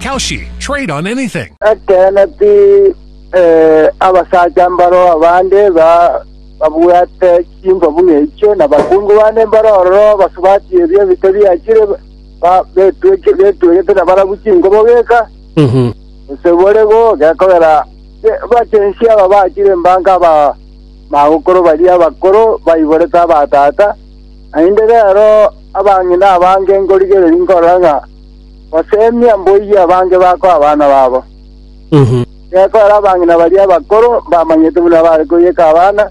Kalshi, trade on anything. Ekeene pi, eh, abasacha mbaro abande ba- babwate chingwa buna echio, na abakungu bande mbaro ororo basubati ebio ebike biachire, ba- betweke- betwegete na barabu chingobo geka, gose bore go gekogera ge- bachensi aba bachire mbanka aba magokoro baria abakoro baiborete abatata, naende rero abang'ina abange nkorigereria nkorora ng'a Goseemia mboiyo abange bakoe abana babo. Gekorera abang'ina baria abakoro mbamanyete buna bare koiyeka abana,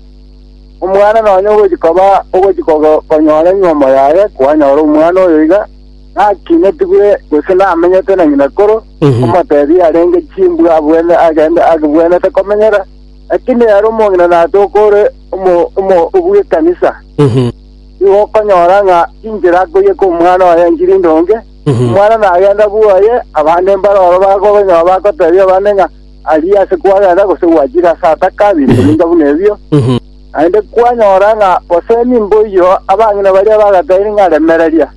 omwana nonya ogochia koba ogochia kogo- konyora nywomo yaye, kwanyora omwana oyo iga nakinetigwe gose namenyete na ng'inakoro, omoteebie arenge chimbwa abwene agende agibwenete komenyera, lakini ere omong'ina natoka ore omo- omo- obw'ekanisa. nigo okonyora ng'a chinchera akoiyeka omwana oye enchiri ndonge, omwana nagenda bwoye, abande mbare oro bakobanyora bagotebia abande ng'a aria ase kwagenda gose gwachire ase ataka, binto binga buna ebio. Naende kwanyora ng'a gose nimboiyo abang'ina baria bagataini ng'a remereria.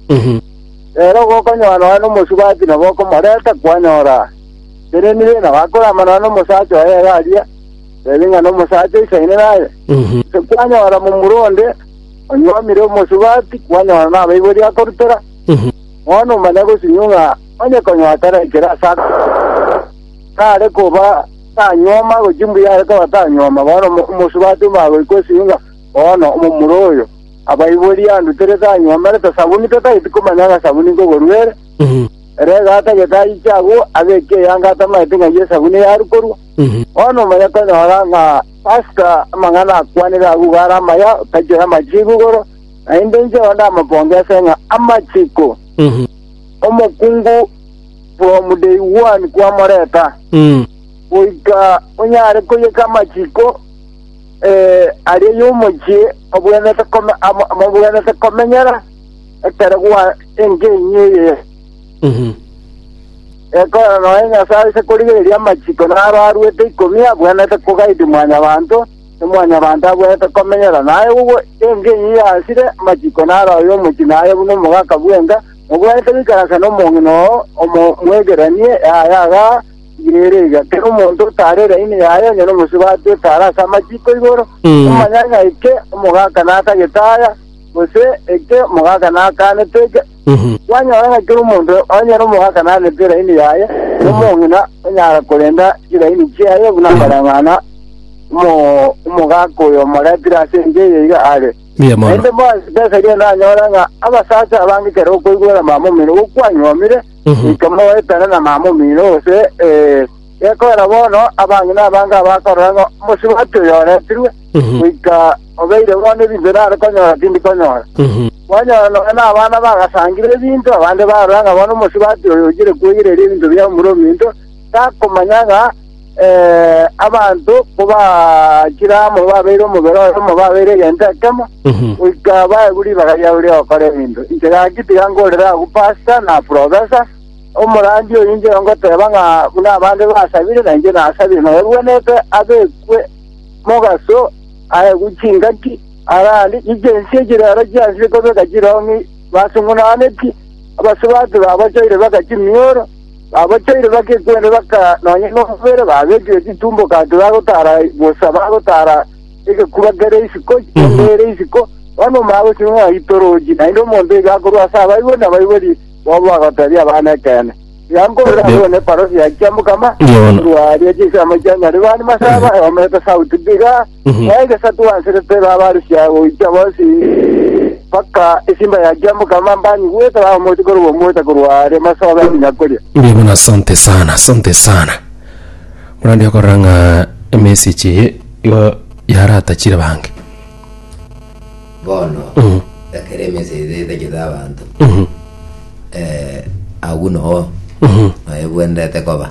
Rero gokonyora nonya nomosubati nabo okomoreta kwanyora teneni be nabo akorama nonya nomosacha oye iga aria, tebi ng'a nomosacha isaine naye. Gose kwanyora momura onde Onyuomire omosubati kwanyora nabaibori akorutera, bono omanya gosinyu ng'a onye konya oterekire ase aka tare koba tanyuoma gochia mbuya are koba tanyuoma, bono omo- omosubati omagoikwa esinyu ng'a bono omomura oyo abaibori anduterete anyuomerete sabuni tatageti komanya ng'a sabuni nkogorua ere. Ere iga atagete ayiche agwo abeke eyanga atamanyete ng'a eyio esabuni yarukorwa. Bono omanya konyora ng'a Asuka amang'ana akwanire agwo iga are amaya, otachire amachiiko igoro, naende inche onde amaboonge ase ng'a amachiiko. Omokungu from day one kwamoreta, goika onyare koyeka amachiiko eh, aria y'omochie obwenerete kome, amo- amobwenerete komenyera ekero gwa engenyi eye. Ekora nonya Nyasae ase korigereria amachiko na aro aruete ikomi abwenerete kogaidi mwanyabanto, na mwanyabanto abwenerete komenyera naye gokwa engenyi yasire, amachiko na aro ay'omochie naye buna omogaka bw'enka, mobwenerete goikaransa nomong'ina oo omomwegeranie, yaye aga igere iga, kera omonto otare eraini yaye onye nomosubati otare ase amachiko igoro, omonyanya eke omogaka natagete aya, gose eke omogaka nakanete eke, Kwanyora ng'a kera omonto onye nomogaka narente eraini yaye, na omong'ina onyara korenta chiraini chiaye buna mbarang'ana omo- omogaka oyo omoretire ase ense eye iga are. Mbuya mono. Naende bonsi tesaria endanyore ng'a abasacha abange kera okoigwera mamomino gokwanywomire, goika moetane na mamomino, gose ee, Gekorera bono, abang'ina abange abakorora ng'a omosubati oyo oretirwe, goika obeire bono ebinto nare konyora tindi konyora. Kwanyora nonya nabana bagasangire ebinto, abande barora ng'a bono omosubati oyo oichire kweyereria ebinto bia omura ominto, takomanya ng'a eh, abanto kobachire amo babeire omobere oyomo babeire egento ekemo, goika baegwe ribaga riabo ri'ogokora ebinto. Inche gaki tiga nkorere agwo pasta na professors, Omorandia oyo inche ngoteeba ng'a buna abande basabire, nainche nasabire, na ebwenerete abekwe mogaso, aegwe chingaki, arande chiche ense echi rero chiansire kobeka chirong'i, basung'unaneti, abasubati babochoire baka chimioro, babochoire baka ekwende baka nonya nomobere, babekire chitumboko ati bagotara bosa, bagotara egekuba kere isiko, kende ere isiko, bono omwabo sing'o aitorochi, naende omonto oigo akorwa ase abaibori na abaibori Bobe bagoteebia abana ekeene. Tiga nkore abwo ne parosi ya chiamokama, Yono. korwa aria chinsemo chia Nyaribani masaba, eomete sauti mbiga, Mhm. na egesatu bansirete babarusia goicha bonsi mpaka esimba ya chiamokama mbanyigwete bamomochia korwa omote korwa aria masobe nginya koria. Mbuya mono asante sana asante sana murandi okorora ng'a emessage eye igo yaratachire bange Bono, ekero emensa eria etachete abanto, eh, agwo noo noyo bwenderete koba.